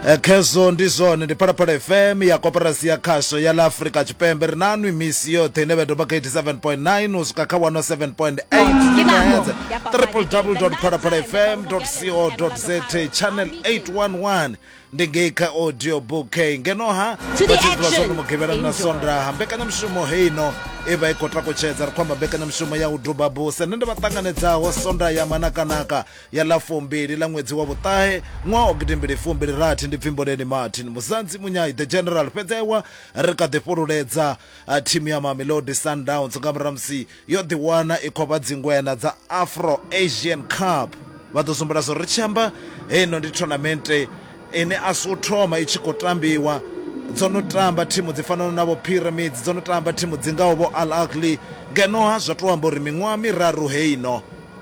Eh, khezwo ndi zwone ndi phalaphala fm ya koporasi ya khasho ya ḽa afurika tshipembe ri na nwi misi yoṱhe ine vha doba kha 87.9 u swika kha 107.8 gigahertz www phalaphala fm co za channel 811 ndi ngei kha audio book ngeno ha To the vhatshidzi vha zwone action. mugivhela na Enjoy. sondaha mbekanyamushumo heino i vha i khou takutshedza ri khou amba mbekanyamushumo ya u duba buse nṋe ndi vha ṱanganedzaho sonda ya manakanaka ya ḽa fumbili ḽa ṅwedzi wa vhuṱahe ṅwaha wa gidimbili fumbili rathi ndi Pfimboleni Martin Muzanzi Munyai the General fhedzi aiwa ri kha ḓi fhululedza thimu ya Mamelodi Sundowns nga murahu musi yo ḓiwana i khou vha dzingwena dza Afro Asian Cup vha ḓo zumbula zwo ri tshi amba heino ndi thonamente ine a si u thoma i tshi khou tambiwa dzo no tamba thimu dzi fanaho na vho Pyramids dzo no tamba thimu dzi ngaho vho Al Ahly ngeno ha zwa tou amba uri miṅwaha miraru heino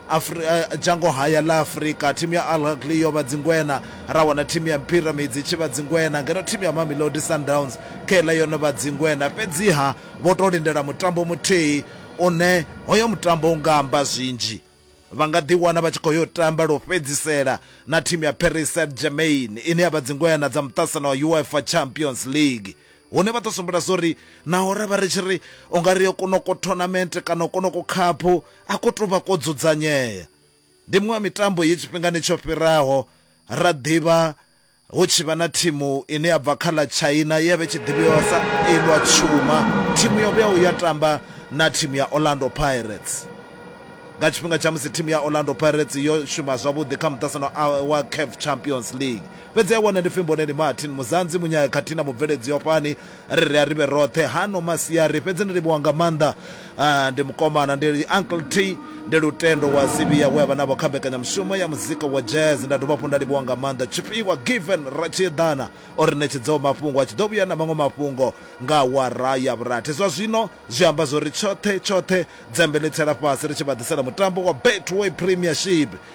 Afri, Dzhango haya ḽa Afrika, thimu ya Al Ahly yo vha dzingwena, ra wana thimu ya Pyramids i tshi vha dzingwena, ngeno thimu ya Mamelodi Sundowns kheiḽa yo no vha dzingwena. Fhedziha vho tou lindela mutambo muthihi une hoyo mutambo u nga amba zwinzhi. Vha nga ḓiwana vha tshi khou yo tamba lwo fhedzisela na thimu ya Paris Saint-Germain ine ya vha dzingwena dza muṱasano wa UEFA Champions League. Hune vha ḓo sumbela zwori naho ra vha ri tshi ri u nga ri yo konoko thonamente kana konoko khaphu a ko tou vha ko dzudzanyea. Ndi muṅwe wa mitambo ye tshifhingani tsho fhiraho ra ḓivha hu tshi vha na thimu ine ya bva kha ḽa China ye ya vha i tshi ḓivhiwa sa Eilwa Tshuma, thimu yo vhuyaho ya tamba na thimu ya Orlando Pirates nga tshifhinga tsha musi thimu ya Orlando Pirates yo shuma zwavhuḓi kha muṱasano wa CAF Champions League. Fhedzi a wana ndi pfi Mboneni Martin, Muzanzi, Munyaya khathihi na mubveledzi wa fhani ri ri a ri vhe roṱhe hano masiari. Fhedzi ndi livhuwa nga maanḓa ndi mukomana, ndi Uncle T, ndi Lutendo wa Sivhiya we a vha navho kha mbekanyamushumo ya muzika wa jazz. Nda dovha hafhu nda livhuwa nga maanḓa Tshifhiwa Given Ratshiedana o ri ṋetshedzaho mafhungo. A tshi ḓo vhuya na maṅwe mafhungo nga awara ya vhurathi. Zwa zwino zwi amba zwo ri tshoṱhe tshoṱhe dzembe ḽi tsela fhasi ri tshi vha ḓisela mutambo wa Betway Premiership.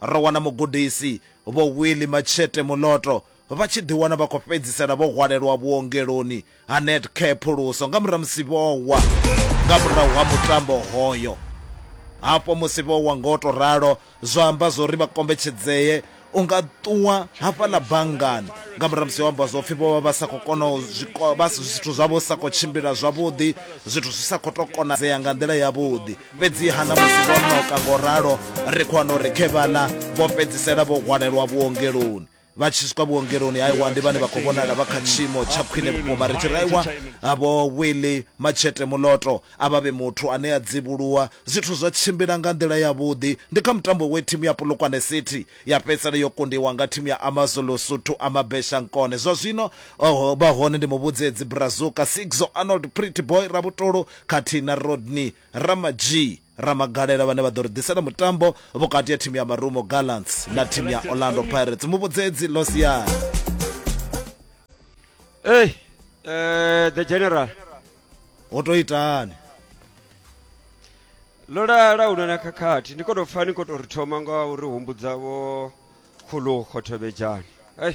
Ro wana mugudisi Vho Willie Matshete Moloto vha tshi ḓiwana vha khou fhedzisela vho hwalelwa vhuongeloni ha Netcare Phuluso nga murahu musi vho wa nga murahu ha mutambo hoyo. Hafho musi vho wa ngo tou ralo, zwo amba zwo ri vha kombetshedzee u nga ṱuwa hafhaḽa banngani nga murahu musi ho amba zwo pfi vho vha vha sa khou kona u zwithu zwavho zwi sa khou tshimbila zwavhuḓi, zwithu zwi sa khou tou konadzea nga nḓila yavhuḓi. Fhedziha na musi vho noka ngo ralo, ri khou wana uri khe vhaḽa vho fhedzisela vho hwalelwa vhuongeloni. Vha tshi swika vhuongeloni, aiwa ndi vhane vha khou vhonala vha kha tshiimo tsha khwine vhukuma. Ri tshi ri aiwa, vho Willy Matshete Muloto a vha vhe muthu ane a dzivhuluwa. Zwithu zwa tshimbila nga nḓila yavhuḓi. Ndi kha mutambo we thimu ya Polokwane City ya fhedzisela yo kundiwa nga thimu ya AmaZulu Suthu a Mabesha Nkone. Zwa zwino o vha hone ndi muvhudzedzi Brazuka Sigzo Arnold Pretty Boy Rabutolo khathihi na Rodney Ramajee Ramagalela vhane vha ḓo ri ḓisela mutambo vhukati ha thimu ya Marumo Gallants na thimu ya Orlando Pirates muvhudzedzi lo siani Hey, uh, the general. ho to itani Ḽo lala hu na na khakhathi ndi khou tou pfa ni khou tou ri thoma nga uri humbudza vho khulu khothobedzhani. Hey,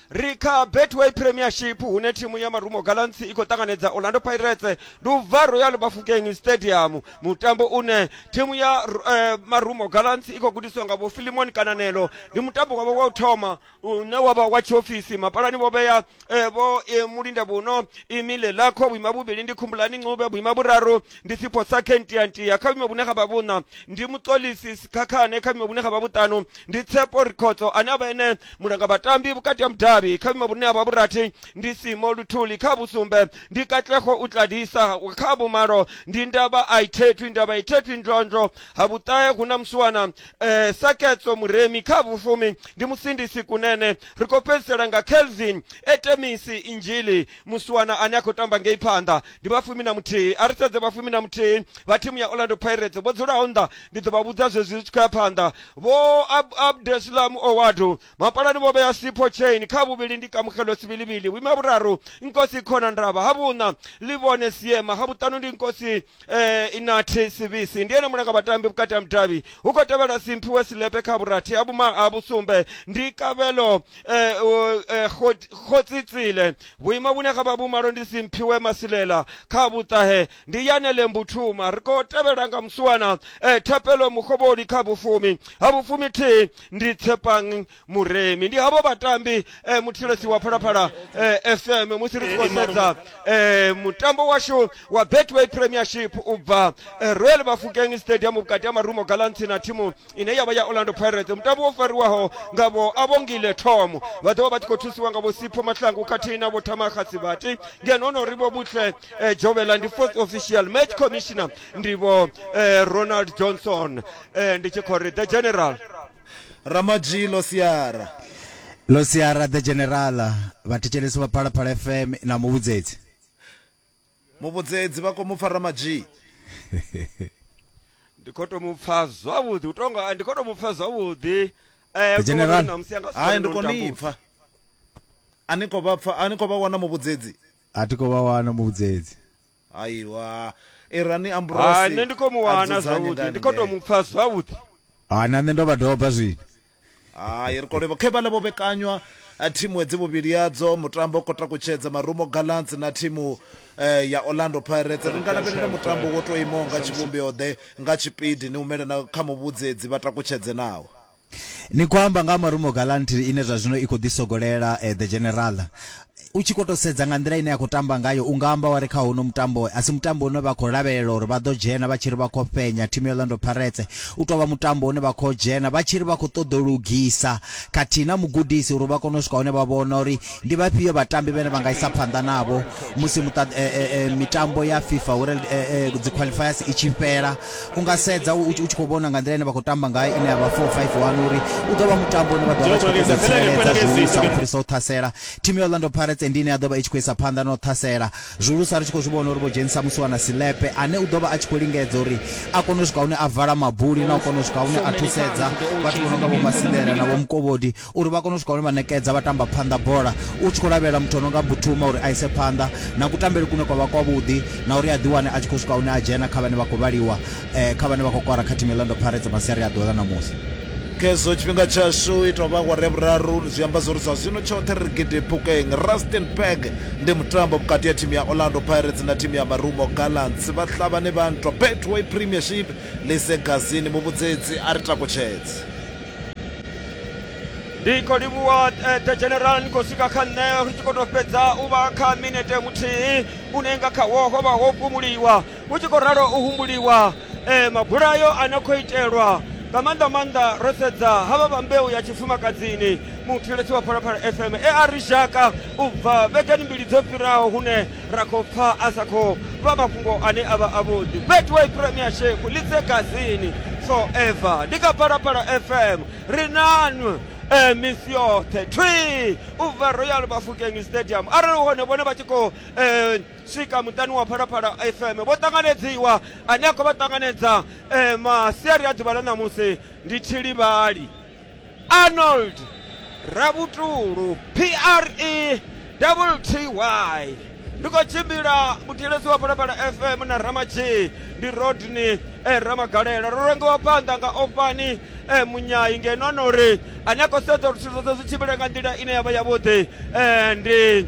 Ri kha Betway Premiership hune thimu ya Marumo Gallants i khou ṱanganedza Orlando Pirates Luvha Royal Bafokeng Stadium mutambo une thimu ya eh, Marumo Gallants i khou gudiswa nga vho Philemon Kananelo ndi mutambo wavho wa u thoma une wavha wa tshiofisi mapalani vho vhea eh, vho eh, Mulinda Vhuno Imile Lakho vhuima vhuvhili ndi Khumbulani Ncube vhuima vhuraru ndi Sipho Sakhe Ntiyantiya kha vhuima vhune ha vha vhuṋa ndi Muṱolisi Sikhakhane kha vhuima vhune ha vha vhuṱanu ndi Tshepo Rikhotso ane a vha ene mulanga vhatambi vhukati ha mudavhi kha vhuimo vhune ha vha vhurathi ndi Simo Luthuli kha vhusumbe ndi Katlego Utladisa kha vhumalo ndi Ndaba Aithethwi Ndaba Aithethwi Ndlondlo ha vhuṱahe hu na musiwana eh, Saketso Muremi kha vhufumi ndi Musindisi Kunene ri khou fhedzisela nga Kelvin Etemisi Injili musiwana ane a khou tamba ngei phanḓa ndi vhafumi na muthihi a ri sedze vhafumi na muthihi vha thimu ya Orlando Pirates vho dzulaho nnḓa ndi ḓo vha vhudza zwezwi zwi tshi khou ya phanḓa Vho Ab Abdeslam Ouaddou, mapalani vho vhea Sipho Chaine kha vhuvhili ndi Kamogelo Sibilibili, vhuima vhuraru Nkosi Khona Ndaba, ha vhuṋa Livhone Siema, ha vhuṱanu ndi Nkosi eh, Inathi Sibisi. Ndi ene mulanga vhatambi vhukati ha mudavhi. Hu khou tevhela Simphiwe Silepe kha vhurathi, ha vhuma ha vhusumbe ndi Kabelo eh, uh, eh, Khot- Khotsitsile. Vhuima vhune ha vha vhumalo ndi Simphiwe Masilela kha vhuṱahe. ndi yanele mbuthuma ri khou tevhela nga muswana eh, thapelo mukovhoni kha vhufumi ha vhufumi thi ndi tshepang muremi ndi havho vhatambi eh, muthilesi wa phalaphala eh, fm musi ri tshi khou sedza eh, mutambo washu wa betway premiership u bva eh, royal bafukeng stadium vhukati ha marumo galanthi na thimu ine yavha ya orlando pirates mutambo wo fariwaho nga vho avhongile thomo vha ḓovha vha tshi khou thusiwa nga vhosipho mahlangu khathihi na vhothamakhasi vhati ngeno hono ri vho butle eh, jovela ndi fourth official match commissioner ndi vho eh, ronald johnson eh, ndi tshi khou ri the general ramadzhi losiara losiara the general vhathetshelesi vha phalaphala fm na muvhudzedzi Muvhudzedzi vha khou mu pfa Ramadzhii. Ndi khou tou mu pfa zwavhuḓi u tonga ndi khou tou mu pfa zwavhuḓi. The General, Hai ndi khou ni pfa. A ni khou vha pfa, a ni khou vha wana Muvhudzedzi? A thi khou vha wana Muvhudzedzi. Aiwa, irani amburosi a dzudzanye nga haningei. Hai na nṋe ndo vha doba zwino. Hai ri kolevho khe vhaḽa vho vhekanywa eh, thimu hedzi vhuvhili yadzo mutambo u kota kutshedza marumo gallants na thimu eh, ya orlando pirates ri nga lavhelela mutambo wo to imaho nga tshivhumbeo ḓe nga tshipidi ni humele na kha muvhudzedzi vha takutshedze naho Ni khou amba nga ha Marumo Gallantry ine zwa zwino i khou ḓisogolela eh, The General. U tshi khou tou sedza nga nḓila ine ya khou tamba ngayo, u nga amba wa ri kha uno mutambo, a si mutambo une vha khou lavhelela uri vha ḓo dzhena vha tshi ri vha khou fhenya thimu ya Orlando Pirates. U tou vha mutambo une vha khou dzhena vha tshi ri vha khou ṱoḓa u lugisa khathihi na mugudisi uri vha kone u swika hune vha vhona uri ndi vhafhio vhatambi vhane vha nga isa phanḓa navho musi muṱa, mitambo ya FIFA World, dziqualifiers i tshi fhela. U nga sedza u tshi khou vhona nga nḓila ine vha khou tamba ngayo ine ya vha 4-5-1 uri u ḓo vha mutambo une vha ḓo vha vha tshi khou ṱoḓa u tsireledza zwihulusa u fhirisa u ṱhasela. Thimu ya Orlando Pirates ndi ine ya ḓo vha i tshi khou isa phanḓa na u ṱhasela, zwihulusa ri tshi khou zwi vhona uri vho dzhenisa Musiwana Silepe ane u ḓo vha a tshi khou lingedza uri a kone u swika hune a vala mabuli na u kona u swika hune a thusedza vhathu vho no nga vho Masindela na vho Mukovhodi uri vha kone u swika hune vha ṋekedza vhatamba phanḓa bola. U tshi khou lavhelela muthu o no nga Mbutuma uri a ise phanḓa na kutambele kune kwa vha kwavhuḓi na uri a ḓiwane a tshi khou swika hune a dzhena kha vhane vha khou vhaliwa eh, kha vhane vha khou kwara kha thimu ya Orlando Pirates masiari a ḓuvha ḽa ṋamusi. Khezwo tshifhinga tshashu ita vha awara ya vhuraru zwi amba zwori zwa zwino tshoṱhe ri gidi phukeng. Rustenburg ndi mutambo vhukati ha thimu ya Orlando Pirates na thimu ya Marumo Gallants. Vhahlabani vha nthwa Betway Premiership Lise Gazini muvhudzedzi a ri takutshedze. ndi khou livhuwa eh, the general ni khou swika kha nṋe ri tshi khou tou fhedza u vha kha minete muthihi une nga khawo ho vha ho fhumuliwa hu tshi khou ralo u humbuliwa eh, mabulayo a no khou itelwa nga maanḓa maanḓa ro sedza havha vha mbeu ya tshifumakadzini muthilesi wa phalaphala fm e a ri shaka u bva vhegani mbili dzo fhiraho hune ra khou pfa a sa khou vha mafhungo ane a vha avhuḓi betway premier shefu litse gazini forever ndi kha phalaphala fm ri nanwe eh, misi yoṱhe twi u bva royal bafukeng stadium arali hone vhone vha tshi khou eh, swika muṱani wa phalaphala fm vho ṱanganedziwa ane a khou vha ṱanganedza eh, masiari a ḓuvha ḽa ṋamusi ndi tshilivhali arnold ravhutulu pre double ty ndi khou tshimbila muthilesi wa phalaphala fm na ramadzhii ndi rodney eh, ramagalela ro rengiwa phanḓa nga ofani eh, munyayi ngeno ano uri ane a khou sedza uri zwithu zwoṱhe zwi tshimbile nga nḓila ine ya vha yavhuḓi eh, ndi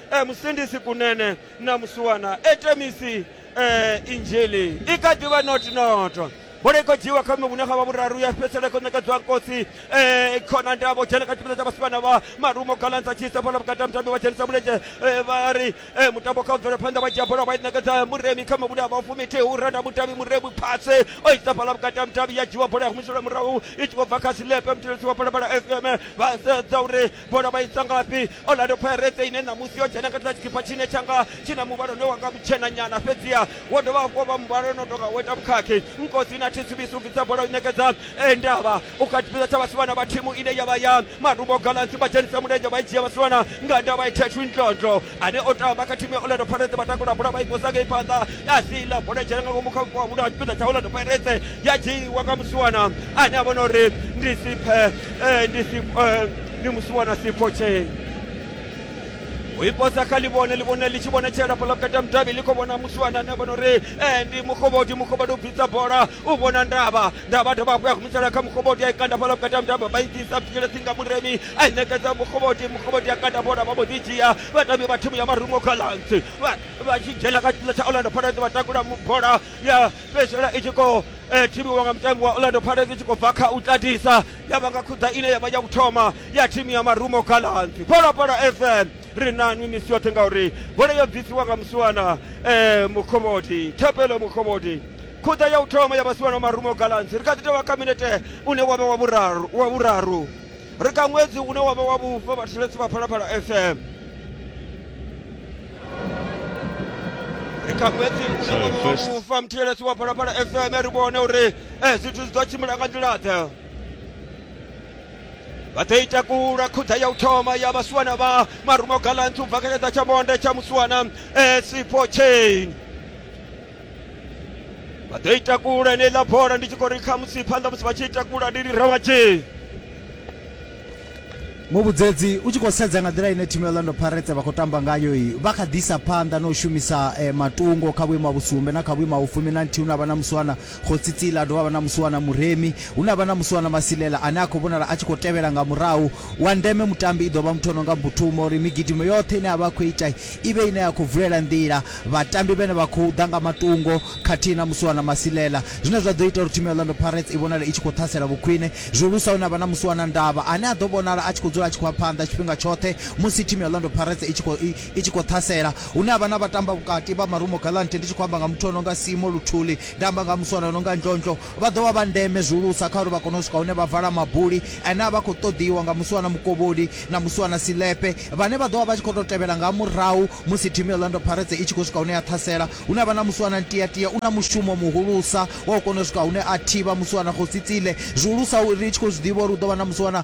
e musindisi kunene na musuwana e temisi e injili i kha ḓivha notinoto bola i khou dzhiiwa kha vhune ha vha vhuraru ya fhedzisela i khou ṋekedzwa nkosi um khona ndavho dzhena kha tshifhinga tsha vhasivhana vha marumo galansa tshisa bola vhukati ha mutambi vha dzhenisa mulenzhe eh, vha ri eh, mutambo kha u bvela phanḓa vha dzhia bola vha i ṋekedza muremi kha mavhune a vha fumithihi u renda mutevhi muremi phase o isa bola vhukati ha mutambi ya dzhiwa bola ya humiselwa murahu i tshi khou bva kha silepe muthelesi wa bola bola fm vha sedza uri bola vha i tswa ngafhi orlando pirates ine ṋamusi yo dzhena khathiḽa tshikipa tshine tshanga tshi na muvhala une wanga mutshena nyana fhedziha wo dovha hafhu vha muvhala ono tonga wo ita vhukhakhi nkosi na thitsubisi u bvisa bola u ṋekedza eh, ndavha u kha tshipiḓa tsha vhasiwana vha thimu ine ya vha ya marumo galansi vha dzhenisa mulenzhe vha i dzhia vhasiwana nga ndavha i thethu ndlondlo ane o tamba kha thimu ya orlando pirates vha takula bola vha i posa ngei phanḓa ya sila bola dzhena nga ngomu kha vhupo ha muno ha tshipiḓa tsha orlando pirates ya dzhiiwa nga musiwana ane a vhona uri ndi siphe eh, ndi Sip- eh, ndi musiwana siphotshe uiposa kha livhone livhone li tshi vhonetshela fhala vhukati ha mudavhi li khou vhona musiwana ane a vhona uri eh, ndi mukhovhodi mukhovhodi u bvisa bola u vhona ndavha ndavha dovha hafhu ya humisela kha mukhoboti a i kanda fhala vhukati ha mitambo vha i ḓisa fikele tsinga muremi a i ṋekedza mukhoboti mukhoboti a kanda bola vha mbo ḓi dzhia vhatambi vha thimu ya marungo gallants vha tshi dzhena kha tshipiḽa tsha orlando pirates vha takula bola ya fhedzisela i tshi khou eh, thivhiwa nga mutambi wa orlando pirates i tshi khou bva kha u tatisa ya vha nga khuḓa ine ya vha ya u thoma ya thimu ya marumo gallants phalaphala fm ri na nwi misi yoṱhe ngauri bola yo bvisiwa nga musiwana um mukhoboti thapelo mukhoboti Khuḓa ya u thoma ya vhasiwa na marumo Galanzi, ri kha ḓi tou vha kha minete une wa vha wa vhuraru, wa vhuraru. Ri kha ṅwedzi une wa vha wa vhufa vhathetshelesi vha Phalaphala FM. Ri kha ṅwedzi une wa vha wa First. vhufa muthelesi wa Phalaphala FM ri vhone uri eh, zwithu zwi ḓo tshimbila nga nḓila ḓe. vha ḓo i takula khuḓa ya u thoma ya vhasiwana vha marumo galanthi u bva kha tshaḓa tsha monde tsha musiwana eh, sipo chain vha ḓo i takula eneiḽa bola ndi tshi khou ri kha musi phanḓa musi vha tshi i takula ndi ri rawatshee muvhudzedzi u tshi khou sedza nga nḓila ine thimu ya orlando pirates vha khou tamba ngayo i vha kha ḓisa phanḓa na u shumisa eh, matungo kha vhuimo ha vhusumbe na kha vhuimo ha vhufumi na nthihi hune a vha na musiwana khotsitsila a dovha a vha na musiwana muremi hune a vha na musiwana masilela ane a khou vhonala a tshi khou tevhela nga murahu wa ndeme mutambi i ḓo vha muthu o no nga mbuthuma uri migidimo yoṱhe ine a vha a khou ita i vhe ine ya khou vulela nḓila Vhatambi vhane vha khou ḓa nga matungo khathihi na Musiwana Masilela, zwine zwa ḓo ita uri thimu ya Orlando Pirates i vhonale i tshi khou ṱhasela vhukhwine, zwihulusa hune ha vha na Musiwana Ndaba ane a ḓo vhonala a tshi khou dzula a tshi khou ya phanḓa tshifhinga tshoṱhe musi thimu ya Orlando Pirates i tshi khou i tshi khou ṱhasela, hune ha vha na vhatambavhukati vha Marumo Gallants ndi tshi khou amba nga muthu o no nga Simo Luthuli, nda amba nga ha Musiwana o no nga Ndlondlo, Vha ḓo vha vha ndeme zwihulusa kha uri vha kone u swika hune vha vala mabuli ane a vha a khou ṱoḓiwa nga Musiwana Mukovholi na Musiwana Silepe, vhane vha ḓo vha vha tshi khou tou tevhela nga murahu musi thimu ya Orlando Pirates i tshi khou swika hune ya ṱhasela. Hune ha vha na Musiwana Ntiatia, u na mushumo muhulusa wa u kona u swika hune a thivha Musiwana Kgosi Tsile, zwihulusa ri tshi khou zwi ḓivha uri hu ḓo vha na Musiwana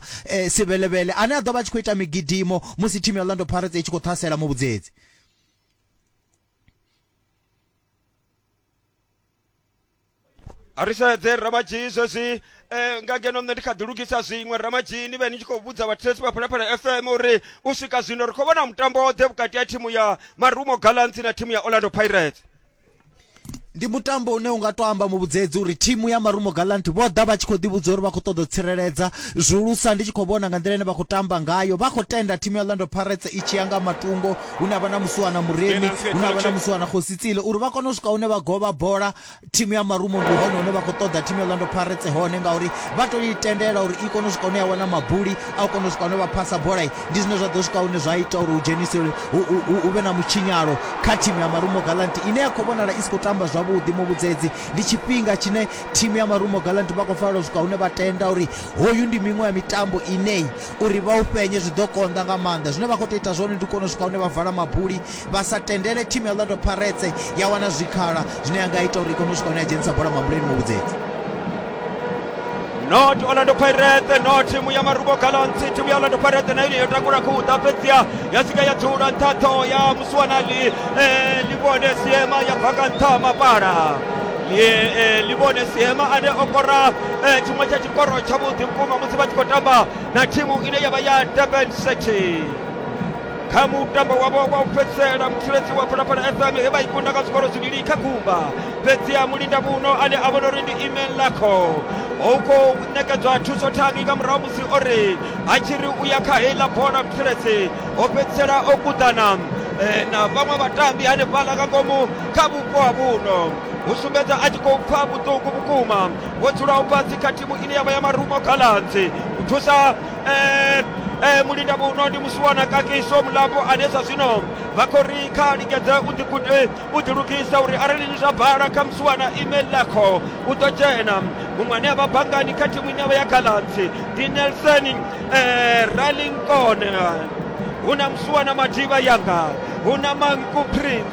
Sibelebele ane a ḓo vha a tshi khou ita migidimo musi thimu ya Orlando Pirates i tshi khou ṱhasela Muvhudzedzi. a ri sedze ramadzhii zwezwi um nga ngeno nṋe ndi kha ḓi lugisa zwiṅwe ramadzhii ni vhe ni tshi khou vhudza vhathetshelesi vha phalaphala fm uri u swika zwino ri khou vhona mutambo oḓe vhukati ha thimu ya marumo gallants na thimu ya orlando pirates ndi mutambo une unga to amba muvhudzedzi uri thimu ya marumo galant vho ḓa vha tshi khou ḓivhudza uri vha khou ṱoḓa u tsireledza zwihulusa ndi tshi khou vhona nga nḓila ine vha khou tamba ngayo vha khou tenda thimu ya orlando pirates i tshi ya nga matungo hune ha vha na musiwana muremi hune ha vha na musiwana khositsile uri vha kone u swika hune vha govha bola thimu ya marumo ndi hone hune vha khou ṱoḓa thimu ya orlando pirates hone ngauri vha to i tendela uri i kone u swika hune ya wana mabuli a u kone u swika hune vha phasa bola ndi zwine zwa ḓo swika hune zwa ita uri hu dzhenise hu vhe na mutshinyalo kha thimu ya marumo galanti ine ya khou vhonala i si khou tamba zwavhuḓi muvhudzedzi ndi tshifhinga tshine thimu ya marumo galanti vha khou fanela u swika hune vha tenda uri hoyu ndi miṅwe ya mitambo inei Uri vha u fhenye zwi ḓo konḓa nga maanḓa. Zwine vha khou tou ita zwone ndi u kona u swika hune vha vala mabuli vha sa tendele thimu ya Orlando Pirates ya wana zwikhala zwine ya nga ita uri i kone u swika hune ya dzhenisa bola mabuleni muvhudzedzi. not orlando pirates no thimu ya marubo gallants thimu ya orlando pirates na yone yo takula khuda fhedziha ya swika ya dzula nṱha ṱhoho ya musiwanali eh, livhone siema ya bva nga nṱha ha mapala Li- eh, livhone siema ane o kora eh, chimwe cha chikoro cha budhi mkuma musi vha tshi khou tamba na thimu ine yavha ya durban city kha mutambo wavho wa u fhedzisela musuledzi wa phalaphala fm he vha i kunda nga zwikoro zwivhili kha kumba fhedzi ha mulinda muno ane a vhona uri ndi email lakho ho khou nekedzwa thuso thangi nga murahu musi o ri a tshi ri u ya kha heiḽa bola musuledzi ho fhedzisela o kuḓana eh, na vhaṅwe vhatambi hanefhaḽa nga ngomu kha vhupo ha vhuno u sumbedza a tshi khou pfa vhuṱungu vhukuma vho dzulaho fhasi kha thimu ine yavha ya marumo galanzi u thusa eh, eh, mulinda muno ndi musiwana kakiso mulapo ane zwa zwino vha khou ri kha lingedze u ḓigu- eh, u ḓilugisa uri arali ni zwa bala kha musiwana email lakho u ḓo dzhena muṅwe ane avha bangani kha thimu ine yavha ya galanzi ndi nelson eh, ralinkone hu na musiwana madiba yanga hu na manku prince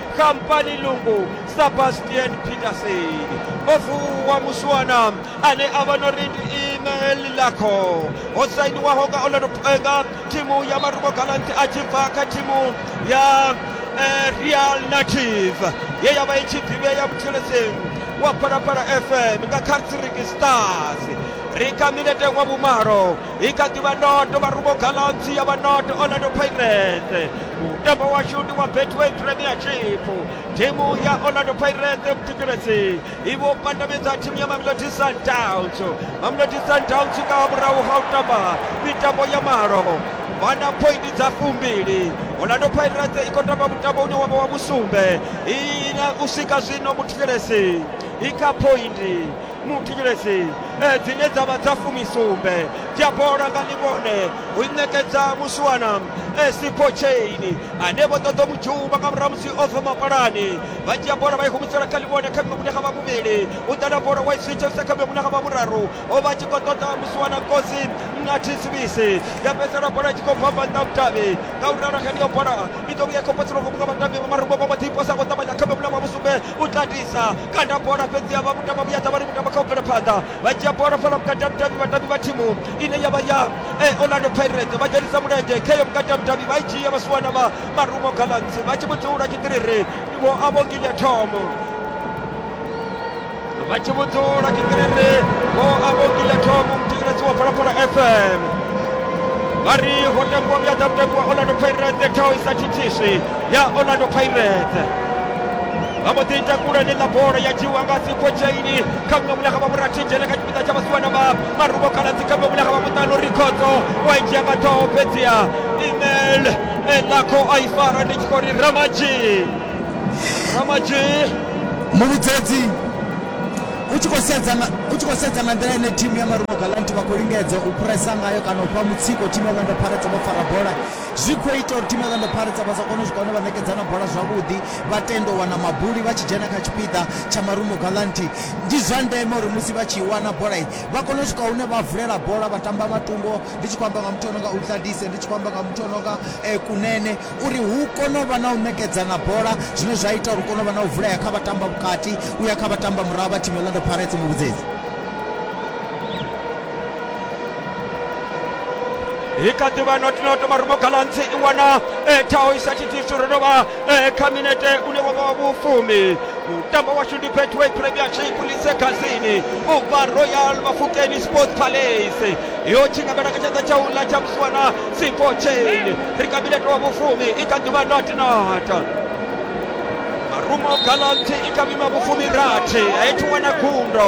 kampani lungu sebastian peterson o vuwa muswana ane a vha no ri ndi email lakho ho sainiwaho nga orlando nga thimu ya marumo galanti a tshi bva kha thimu ya eh, real native ye ya vha i tshi ḓivhea mutheledzeni wa phalaphala fm nga kha tsiriki stars ri kha minete wa vhumalo i kha ḓivha noto vharubo galaxy ya vha noto orlando pirates mutambo washu ndi wa betway premiership thimu ya orlando pirates vhuthetshelesi i vho pandamedza thimu ya mamelodi sundowns mamelodi sundowns nga murahu ha u tamba mitambo ya malo vha na pointi dza fumbili orlando pirates i khou tamba mutambo une wavha wa musumbe i na u swika zwino muthetshelesi i kha pointi muthivhelesi eh, dzine dza vha dza fumisumbe dzi a bola nga ḽivhone u ṋekedza musiwana eh, sipo chaini ane vho ṱoḓa mu dzhuma nga murahu musi o bva mapalani vha dzhia bola vha i humisela kha ḽivhone kha miṅwe munekha vha muvhili u ḓala bola wa i switha sa kha miṅwe munekha vha vhuraru o vha tshi khou ṱoḓa musiwana kosi na thisibisi ya fhedzisela bola tshi khou bva banda vhudavhi nga u ralo heneyo bola i ḓo vhuya i khou potsela ngomu nga vhatambi vha marumbo vha mbo ḓi posa ngo ṱavhanya kha miṅwe munekha wa vhusumbe u tatisa kanda bola fhedzi ya vha kutamba vhuya ṱavhani kutamba kha u bvela phanḓa vha dzhia bola fhala vhukati ha mudavhi vhatambi vha thimu ine ya vha ya eh, orlando pirates vha dzhenisa mulenzhe kheyo vhukati ha mudavhi vha i dzhia vha suwana vha marumo gallants vha tshi vhudzula tshitiriri vho a vho nginya thomo vha tshi vhudzula tshitiriri vho a vho nginya thomo muthetshelesi wa phalaphala fm vha ri ho tambiwa vhuya ḓa mutambi wa orlando pirates ṱhaho i sa thithiswi ya orlando pirates vha mbo ḓi takula ḽiḽa bola ya dzhiwa nga sikotshaini kha muṅwe mulanga vha murathinzhele kha tshipiḓa tsha vhasiwana vha marubo khaladzi kha muṅwe mulanga vha muṱanu rikhodzo wa i dzhia nga ṱhoho fhedziha email elakho a i fara ndi tshi khou ri ramaji ramaji muvhudzedzi u tshi khou sedza nga u tshi khou sedza nga nḓila ine thimu ya marumo galant vha khou lingedza u phuresa ngayo kana u fha mutsiko thimu ya orlando pirates vho fara bola Zwi khou ita uri thimu ya Orlando Pirates vha sa kone u swika hune vha ṋekedzana bola zwavhuḓi, vha tenda u wana mabuli vha tshi dzhena kha tshipiḓa tsha Marumo Gallante. Ndi zwa ndeme uri musi vha tshi i wana bola, vha kone u swika hune vha vulela bola vha tamba nga tumbo, ndi tshi khou amba nga muthu o no nga Utladise, ndi tshi khou amba nga muthu o no nga Kunene, uri hu kone u vha na u ṋekedzana bola zwine zwa ita uri hu kone u vha na u vulea kha vhatamba vhukati u ya kha vhatamba murahu vha thimu ya Orlando Pirates, Muvhudzedzi. i kha ḓi vha not not marumo galantsi i wana eh, thaho i sa tshithisu ro dovha eh, kha minete une wa vha wa vhufumi mutambo washu ndi betway premiership lise khasini u bva royal mafukeni sports palace yo tshingamela kha tshanḓa tsha uḽa tsha musiwana sifo chain ri kha minete wa vhufumi i kha ḓi vha not not marumo galantsi i kha mima vhufumi rathi a i thi wana gundo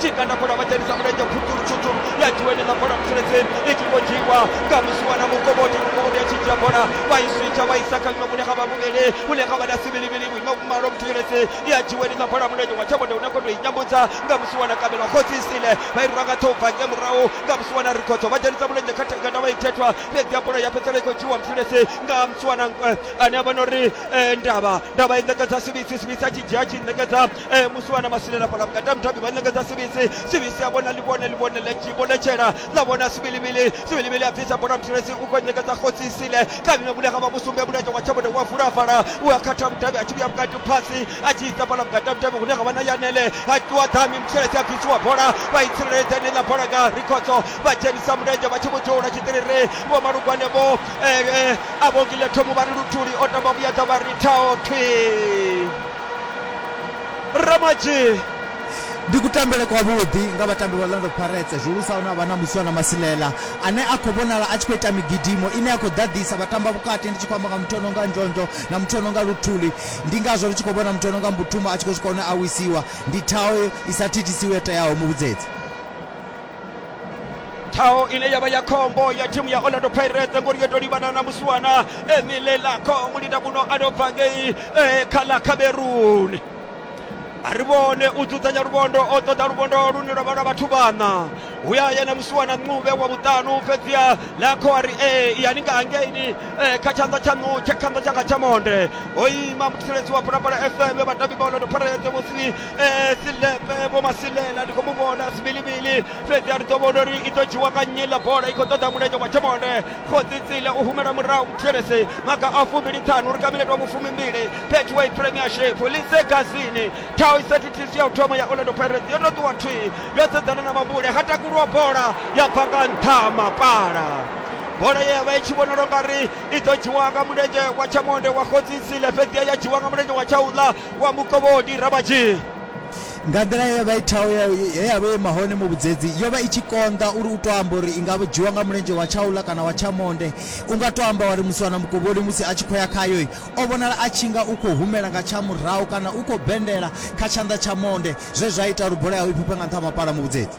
chikanda bola vadzhenisa mulenzhe khundulu tshuthu ya dzhiwa ine na bola musuledzeni i tshi khou dzhiwa nga musiwa na mukovhoti mukovhoti ya tshi dzhia bola vha i switsha vha isa kha ḽino vhune kha vha vhuvhili vhune kha vha na sivhilivhili vhuimo vhumalo muthetshelesi ya dzhiwa ine na bola mulenzhe wa tshavhode une khondo i nyambudza nga musiwa na kabelo khotsi isile vha i rwa nga ṱhoho bva nge murahu nga musiwa na rikhodzo vha dzhenisa mulenzhe kha thengana vha i thethwa fhedzi ya bola ya fhedzisela i khou dzhiwa muthetshelesi nga musiwa na ane a vha na uri ndavha ndavha i ṋekedza sivhisi sivhisi a tshi dzhia a tshi ṋekedza e musi vhana masilela fhala vhukati ha mutambi vha ṋekedza sivisi sivisi a vhona ḽivhone ḽivhone ḽa tshi vhonetshela ḽa vhona sivilivili sivilivili a bvisa bola muthulesi u khou ṋekedza khotsi isile kha vhime vhune kha vha vhusumbe mulenzhe wa tshavhone wa vula fhala u a khatha mutambi a tshi vhuya vhukati phasi a tshi isa fhala vhukati ha mutambi hune ha vha na yanele a ṱuwa ḓami muthulesi a bvisiwa bola vha i tsireledza ine ḽa bola nga rikhodzo vha dzhenisa mulenzhe vha tshi vho dzula tshiṱiriri vho malugwane vho a vhongile thomo vha ri luthuli o tamba vhuyedza vha ri thao thwi Ramadzhie. Ndi kutambele kwavhuḓi nga vhatambi vha Orlando Pirates, zwihulusa hune ha vha na Muswana Masilela ane a khou vhonala a tshi khou ita migidimo ine ya khou ḓaḓisa vhatambavhukati. Ndi tshi khou amba nga muthu o no nga Ndzhondzho na muthu o no nga Luthuli. Ndi ngazwo ri tshi khou vhona muthu o no nga Mbutuma a tshi khou swika hune a wisiwa. Ndi thaho i sa thithisiwi yo teaho muvhudzedzi. ṱhaho ine yavha ya khombo ya thimu ya orlando pirates ngori yo to livhana na musiwana emile lako mulinda muno a no bva ngei eh, kha ḽa cameroon a ri vhone u dzudzanya luvhondo o ṱoḓa luvhondo lune lwa vha lwa vhathu vhana hu ya yena musiwana ncube wa vhuṱanu fhedziha lakho a ri e yani nga hangeini eh, kha tshanḓa tshaṋu tsha tshanḓa tshanga tsha monde o ima mutsireledzi wa bulabula fm vhatambi vha orlando pirates musi Eh, silepe eh, vho masilela ndi khou mu vhona sivhilivhili fhedzi a ri ḓo vhona uri i ḓo dzhiwa nga nnyi ḽa bola i khou ṱoḓa mulenzhe wa tshemone khotsitsile u humela murahu muthelesi maga a fumbili ṱhanu ri kamiletwa vhufumimbili betway premiership lise gazini thao i sathithisi ya u thoma ya orlando pirates yo no ṱuwa thwii yo sedzana na mambule ha takuluwa bola ya bva nga nṱha mapala bola ye ya vha i tshi vhonala ungari i ḓo dzhiwa nga mulenzhe wa tshamonde wa khotsitsile fhedzi ya dzhiwa nga mulenzhe wa tshauḽa wa mukovhoni rabadzhi nga nḓila ye vha ithaho he ya vha ima hone muvhudzedzi yo vha i tshi konḓa uri u to amba uri i nga dzhiwa nga mulenzhe wa tshaula kana wa tshamonde u nga to amba wari musi wana mukovholi musi a tshi khou ya khayo o vhonala a tshi nga u khou humela nga tsha murahu kana u khou bendela kha tshanḓa tsha monde zwe zwa ita uri bola yawe i fhufhe nga nṱha ha mapala muvhudzedzi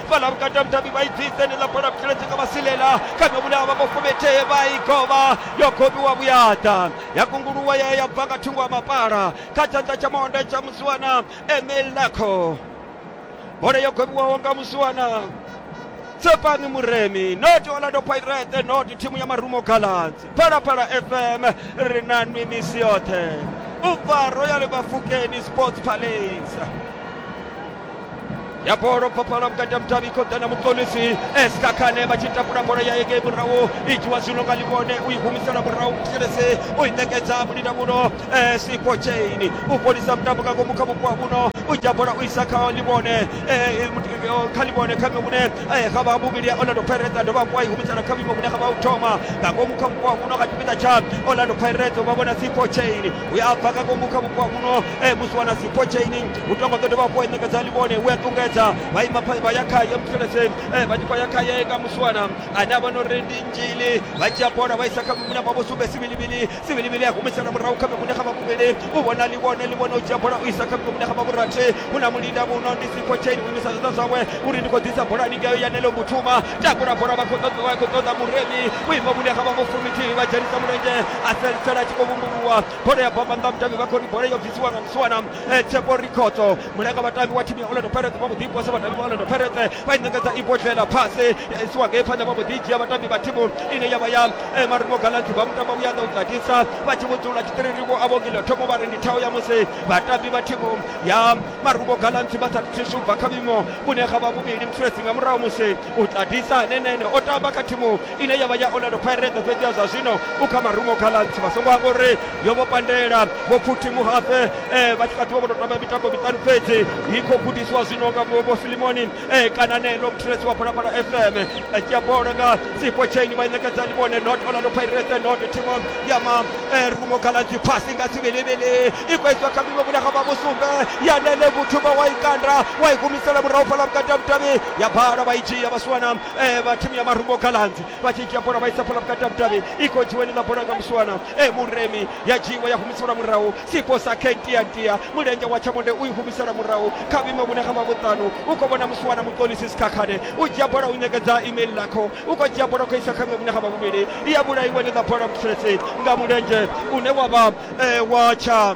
balabukata mtabi bayidzise ni lapala kuteletse nga masilela kana vhulaya vha mufumete vha i govha yo gobiwa vhuyaḓa ya kunguluwa ya ya bva nga thungo ha mapala kha tshanḓa tsha monde tsha musiwana emil lako bola yo gobiwaho nga musiwana tsepani muremi not orlando pirate not thimu ya marumo gallants phalaphala fm ri na nwi misi yoṱhe u bva royal bafukeni sports palace ya bolo papala vhukati ha mudavhi khoḓa na mukonisi eska khane vha tshi takula bola ya engei murahu i dzhiwa zwino nga ḽivhone u i humisela murahu muselese u i ṋekedza mulina muno siko chaini u fholisa mutambo nga ngomu kha vhupo ha muno u dzhia bola u isa kha ḽivhone kha ḽivhone kha vhe vhune ha vha muvhili ya orlando pirates a dovha hafhu a i humisela kha vhuimo vhune ha vha u thoma nga ngomu kha vhupo ha muno nga tshipiḓa tsha orlando pirates vha vhona siko chaini uya a bva kha ngomu kha vhupo muno e musi wana sipho chaini u tonga ḓo dovha hafhu a ṋekedza livhone u a ṱungedza vha ima pha- vha ya khaye muthelese e vha tshi khou ya khaye nga musi wana ane a vha no ri ndi nzhili vha dzhia bola vha isa kha mimune vha vho sumbe sivilivili sivilivili a humisela murahu kha mimune kha vhavhuvhili u vhona livhone livhone u dzhia bola u isa kha mimune kha vhavhurathi hu na mulinda muno ndi sipho chaini u imisa zwanḓa zwawe uri ndi khou ḓisa bola ningeyo yanelo muthuma takula bola vha khou ṱoḓa vha khou ṱoḓa muremi u ima mune kha vha vho fumithihi vha dzhenisa mulenzhe Asel Tela a tshi khou vhumbuluwa bola ya bva phanḓa mutambi vha khori bola yo bvisiwa nga musiwana eh, Tshepo Rikhoto mulanga vhatambi wa thimu ya Orlando Pirates vha mbo ḓi posa vhatambi vha Orlando Pirates vha i ṋekedza ibodlela phase ya isiwa ngei phanḓa vha mbo ḓi dzhia vhatambi vha thimu ine ya vha ya eh, Marumo Gallants vha mutamba vhuya ḓa u ḓadisa vha tshi vhudzula tshiṱiririwo a vhongile thoma vha ri ndi thao ya musi vhatambi vha thimu ya Marumo Gallants vha sa thuswa ubva kha vhuimo vhune ha vha vhuvhili musulesi nga murahu musi u ḓadisa nenene o tamba kha thimu ine ya vha ya orlando pirates fhedzi ya zwa zwino u kha marumo kha lantsi vha songo amba uri yo vho pandela vho pfuthi muhafe eh, vha tshi kha ḓivha vho tou tamba mitambo miṱanu fhedzi i khou gudisiwa zwino nga vho filimoni eh, kana ne long tres wa phalaphala fm a dzhia bola nga sipo chain vha i ṋekedza limone not orlando pirates not thimu ya marumo eh, kha lantsi phasi nga sivhelivheli i khou iswa kha miwe vhulanga vha musumbe ya nele vhuthu vha wa i kanda wa i humisela murahu fhala vhukati ha vhutavhi ya bala vha i dzhia vha suwana eh, vha thimu ya marungo galanzi vha tshi dzhia bola vha isa bola vhukati ha vhudavhi i khou dzhiweni ḽa bola nga musiwana e eh, muremi ya dzhiiwa ya humiselwa murahu siposa kentiatia mulenzhe wa tshamonde u i humisela murahu kha vhime vhune ha vha vhuṱanu u khou vhona musiwana muṱolisi sikhakhane u dzhia bola u ṋekedza email lakho u khou dzhia bola u khou isa kha vhime vhune ha vha vhuvhili i ya vhulaiweni ḽa bola mutsiresi nga mulenzhe une wa vha eh, wa tsha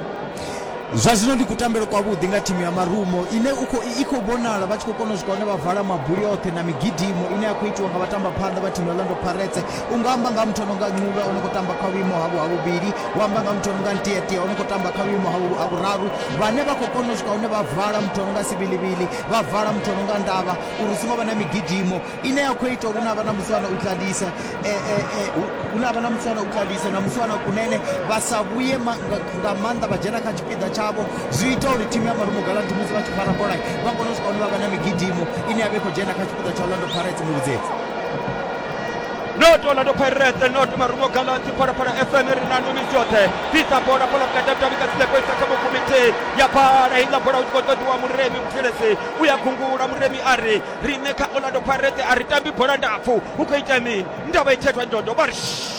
zwa zwino ndi kutambelo kwavhuḓi nga thimu ya marumo ine i khou vhonala vha tshi khou kona u swika hune vha vala mabuli oṱhe na migidimo ine ya khou itiwa nga vhatamba phanḓa vha thimu ya lando paretse u nga amba nga muthu ononga ncuva o no khou tamba kha vhuimo havho ha vhuvhili u amba nga muthu ononga ntietie o no khou tamba kha vhuimo ha vhuraru vhane vha khou kona u swika hune vha vala muthu ononga sivilivili vha vala muthu ononga ndavha uri u songo vha na migidimo ine ya khou ita uri na vha na muswana u ṱalise eh, eh, eh, hu na vha na muswana u ṱalise na muswana kunene vha sa vhuye nga maanḓa vha dzhena kha tshipiḓa tshavho zwi ita uri thimu ya marumo galanti musi vha tshi fara bola vha kone u swika hune vha vha na migidimo ine ya vha i khou dzhena kha tshipiḓa tsha orlando pirates muvhudzedzi not Orlando Pirates, not Marumo Gallants, para para FM Renano Mijote, Pisa Bora Pola Kata Tabika Seko Isaka Mukumite, Yapara Ina Bora Uskoto Dua Muremi Mtiresi, Uya Kungura Muremi Ari, Riṋe kha Orlando Pirates a ri tambi bola ndapfu, hu khou itea mini? Ndavha i khethwa ndodo, vha ri shh!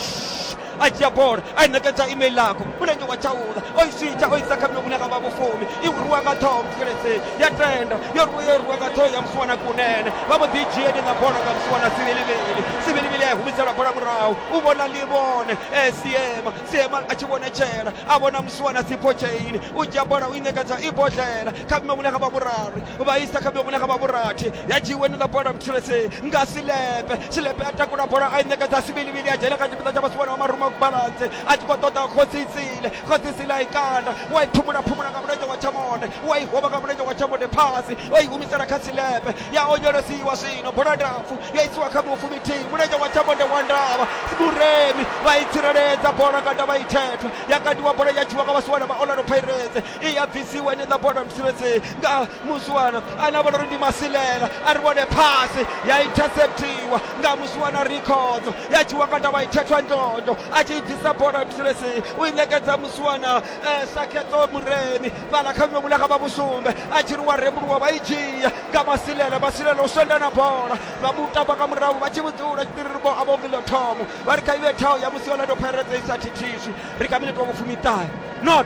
A dzhia bola a i ṋekedza Ime Ilako, mulenzhe wa Chauḽa o i switsha o isa kha muṅwe une a nga vha Vhufumi. I rwiwa nga ṱhoho Mutheledzei, ya tenda, yo rwiwa yo rwiwa nga ṱhoho ya Musiwana Kunene, vha mbo ḓi i dzhia heneiḽa bola nga Musiwana Sivilivili. Sivilivili a i humisela bola murahu, u vhona Ḽivhone e Siema, Siema a tshi vhonetshela a vhona Musiwana Sipho Chain, u dzhia bola u i ṋekedza Ibodlela kha muṅwe une a nga vha Vhurari. vha isa kha vhune kha vha vhurathi ya dzhiiwe ni ḽa bola mthulesi nga silepe silepe a takula bola a i ṋekedza sivilivili a dzhena kha tshipiḓa tsha vhasiwana wa maruma balansi a tshi khou ṱoḓa khodzitsile khodzitsile a i kanda wa i phumula phumula nga mulenzhe wa tshamone wa i hovha nga mulenzhe wa tshamone phasi o i humisela kha silepe ya onyolosiwa zwino bola ndapfu ya isiwa kha mufu mithihi mulenzhe wa tshamone wa ndavha vhuremi vha i tsireledza bola kanda vha i thetha ya kandiwa bola ya dzhiwa nga vhasiwana vha orlando pirates i ya bvisiwa ni ḽa bola mtsivhedzi nga muswana ane a vhona uri ndi masilela a ri vhone phasi ya interceptiwa nga muswana rikhodzo ya dzhiwa nga ndavha ithethwa ndondo a tshi i bvisa bola mtsivhedzi u i ṋekedza muswana eh, sakhedzo muremi fhaḽa kha vhuṅwe vhulaka vha vhusumbe a tshi ri wa rembuluwa vha i dzhia nga masilela masilela u swenda na bola vha mu tamba nga murahu vha tshi vhudzula tshiṱiriri vho a vho vilo thomo vha ri kha ive thao ya musi yolando pirates i sa thithiswi ri kha minete wa vhufumi ṱahe not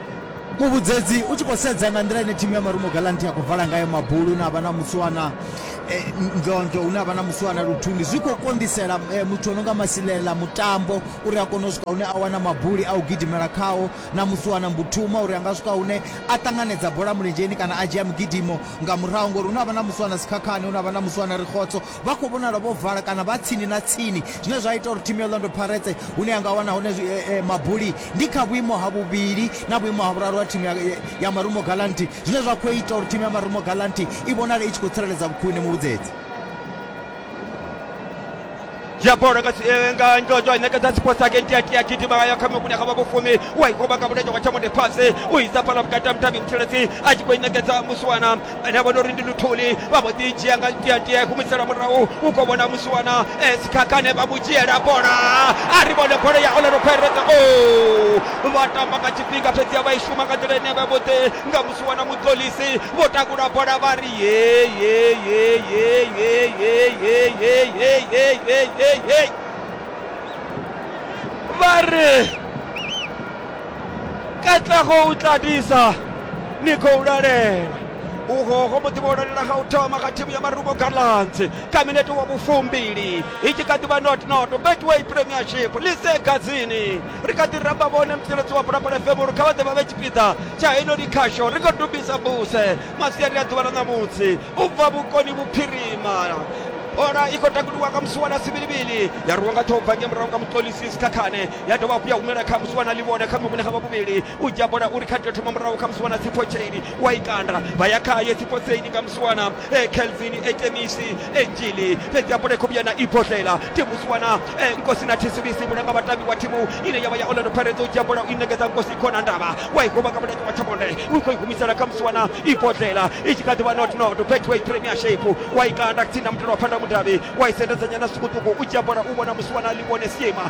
Muvhudzedzi, U tshi khou sedza nga nḓila ine thimu ya Marumo Gallants ya khou vala ngayo mabuli hune ha vha na Muswana eh, Ndlondlo, hune ha vha na Muswana Luthuli, zwi khou konḓisela eh, muthu o no nga Masilela Mutambo uri a kone u swika hune a wana mabuli a u gidimela khao na Muswana Mbuthuma uri a nga swika hune a ṱanganedza bola mulenzheni kana a dzhia migidimo nga murahu ngori hune ha vha na Muswana Sikhakhane, hune ha vha na Muswana Rikhotso, vha khou vhonala vho vala kana vha tsini na tsini, zwine zwa ita uri thimu ya Orlando Pirates hune ya nga wana hone mabuli ndi kha vhuimo ha vhuvhili na vhuimo ha vhuraru ha thimu ya Marumo Gallants, zwine zwa khou ita uri thimu ya Marumo Gallants i vhonale i tshi khou tsireledza vhukhwine muvhudzedzi. dzhia bola nga nga ndodo i ṋekedza sports agent ya tia gidima ngayo kha mukune kha vha vhufumi u a i goba nga mulenzhe wa thamone fhasi u isa fhala vhukati ha mutambimuthiledzi a tshi khou i ṋekedza muswana ane a vhona uri ndi luthuli vha mbo ḓi dzhia nga ntiatia i humiselwa murahu u khou vhona musiwana sikhakhane vha mu dzhiela bola a ri vhone bola ya olero phereza o vha tamba nga tshifhinga fhedzi a vha i shuma nga nḓila ine vha vhoṱhe nga musiwana mudzolisi vho takula bola vha ri vha ri katlego o tla disa niko o lalela uhoho muḓivholonela ga u thoma ga thimu ya marubo gallants ka minete wa vhufumbili i tshi kha ḓivha notnoto betway premiership lise gadzini ri kha ḓi ramba vhone mtsireledzi wa bulapala fm uri kha vha ḓe vha vhe tshipiḓa tsha henoni khasho ri kho dubisa buse masiari a ḓuvha ḽa ṋamutsi u bva vhukoni vhuphirima bola i khou takuliwa nga musi wa na sivilivili ya rwiwa nga thobva nge murahu nga mutolisisi khakhane ya dovha hafhu ya humela kha musi wana ḽivhona kha muvhune ha vha vhuvhili u dzhia bola uri kha tea thoma murahu kha musi wana tsipho tsheini wa i kanda vha ya khaye tsipho tseini nga musi wana eh, kelvin etemisi enjili eh, fhedzi ya bola i khou vhuya na ibodlela timu si wana eh, nkosi na thisibisi mulanga vhatambi wa thimu ine ya vha ya orlando pirates u dzhia bola u i ṋekedza nkosi khona ndavha wa i huvha nga mulenge wa thabonde u khou i humisela kha musi wana ibodlela i tshi kha ḓi vha not not betway premiership wa i kanda tsini na mutalo wa phanda mudavhi wa i sendedzanyana sukuṱuku u dzhia bola u vhona musi wana ḽivhone siema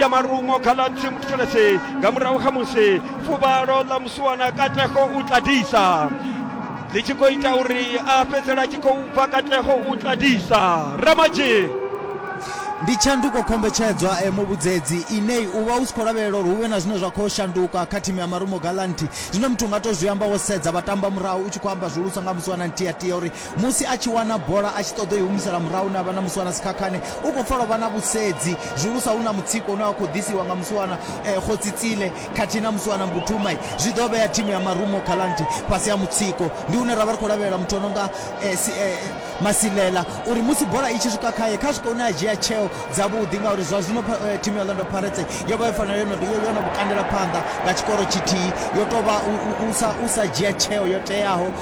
ya malungo kha ḽa themokirasi nga murahu kha musi fuvhalo ḽa musiwana katlego u tladisa ḽi tshi khou ita uri a fhedzela tshi khou bva katlego u tladisa ramadzhi ndi tshanduko khombetshedzwa e muvhudzedzi inei u vha u si khou lavhelela uri hu vhe na zwine zwa khou shanduka kha thimu ya marumo galanthi zwine muthu nga to zwi amba wo sedza vha tamba murahu u tshi khou amba zwihulusa nga musiwana ntiatia uri Musi a tshi wana bola a tshi ṱoḓa u i humisela murahu ine a vha na Musiwana Sikhakhane, u khou pfa lwo vha na vhusedzi, zwihulusa hu na mutsiko une wa khou ḓisiwa nga Musiwana Khosi Tsile khathihi na Musiwana Mbuthumai. Zwi ḓo vhea thimu ya Marumo Gallants fhasi ha mutsiko. Ndi hune ra vha ri khou lavhelela muthu o no nga Masilela uri musi bola i tshi swika khae, kha swike hune a dzhia tsheo dzavhuḓi ngauri zwa zwino thimu ya Orlando Pirates yo vha yo fanela yo no yo no vhu kandela phanḓa nga tshikoro tshithihi, yo tou vha u sa dzhia tsheo yo teaho.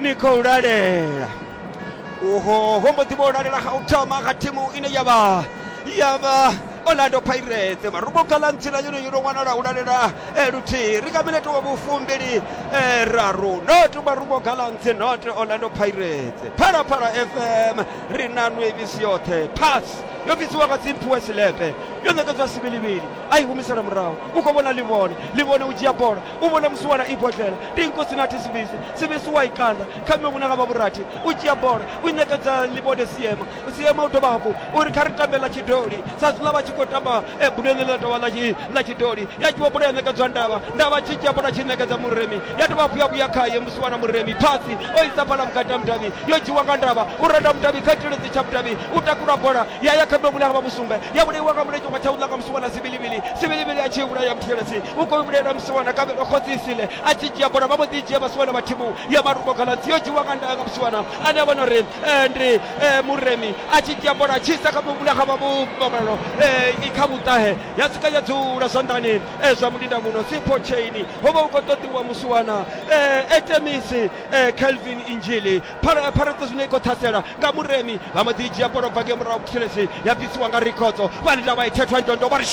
ni khou lalela uho ho mbo ḓi vho lalela ha u thoma kha thimu ine ya vha ya vha orlando pirates maruboka ḽa ntsila yone yo no wanala u lalela eh, luthihi ri kha minete wa vhufumbili eh, raru not maruboka ḽa ntsi not orlando pirates phalaphala fm ri na nwevisi yoṱhe pass yo bvisiwa nga dzimphiwe silepe yo ṋekedzwa sivilivili a i humisela murahu u khou vhona livhone livhone u dzhia bola u vhona musi wala ibodlela dinko sina thi sivisi sivisi wa ikanda kha miṅwe vhunanga vha vhurathi u dzhia bola u ṋekedza ḽibode siema siema u dovha hafhu uri kha ri tambe ḽa tshidoli sa zwiḽa vha tshi khou tamba eh, buleni ḽa tovha ḽa tshidoli ya dzhiwa bola ya ṋekedzwa ndavha ndavha tshi dzhia bola tshi ṋekedza muremi ya dovha hafhu ya vhuya khaye musi wana muremi phasi o isa fhala vhukati ha mudavhi yo dzhiwa nga ndavha u renda mudavhi kha tshiledzi tsha mudavhi u takula bola Ya ya kha ḓo vhulaha vha vhusumbe, ya vhulaiwa nga mulenzhe wa tshaula nga musiwana Sibilivili. Sibilivili a tshi vhulaya Muthelesi, u khou vhulaela musiwana Kavhelwa khotsi Isile. A tshi dzhia bola, vha mbo ḓi dzhia vhasiwana vha thimu ya malungo Galadzi. Yo dzhiiwa nga ndaya nga musiwana ane a vha no ri ndi Muremi. A tshi dzhia bola, a tshi isa kha vhulaha vha vhumalo kha vhuṱahe, ya swika ya dzula zwanḓani zwa mulinda muno Sipho Tsheini. Ho vha hu khou ṱoḓiwa musiwana Artemisi Kelvin Injili. Phara- pharedzo zwino i khou ṱhasela nga muremi vha mbo ḓi dzhia bola u bva ngei murahu thilesi ya bvisiwa nga rikhodzo vha lila vha i thethwa ndondo vha ri